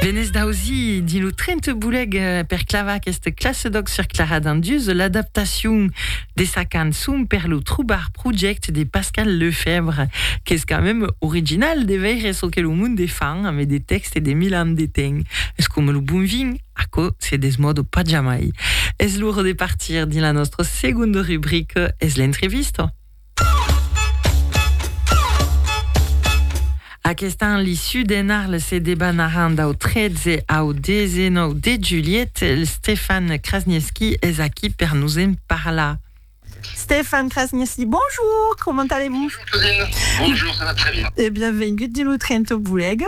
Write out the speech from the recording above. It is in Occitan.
Venez d'ausi dins lo tren te boulèc per clavar aqueste classe d'òc sur Clara Dandius de l'adaptacion de sa cançon per lo Troubar Project de Pascal Lefèvre, qu'es quand mèm original de veire çò que lo monde fan ame de tèxt e de mil ans de temps. Es coma lo bon vin, aquò se desmòda pas jamai. Es l'ora de partir dins la nòstra segonda rubrica, es l'entrevista. Aquest an, li sud en Arles se debanaràn dau 13 au 19 de julhet. Stefan Krasniewski es aquí per nos en parlar. Stefan Krasniewski, bonjour, comment allez-vous? Bonjour Claudine, bonjour, ça va très bien. E bienvengut dins lo Trento Bolega.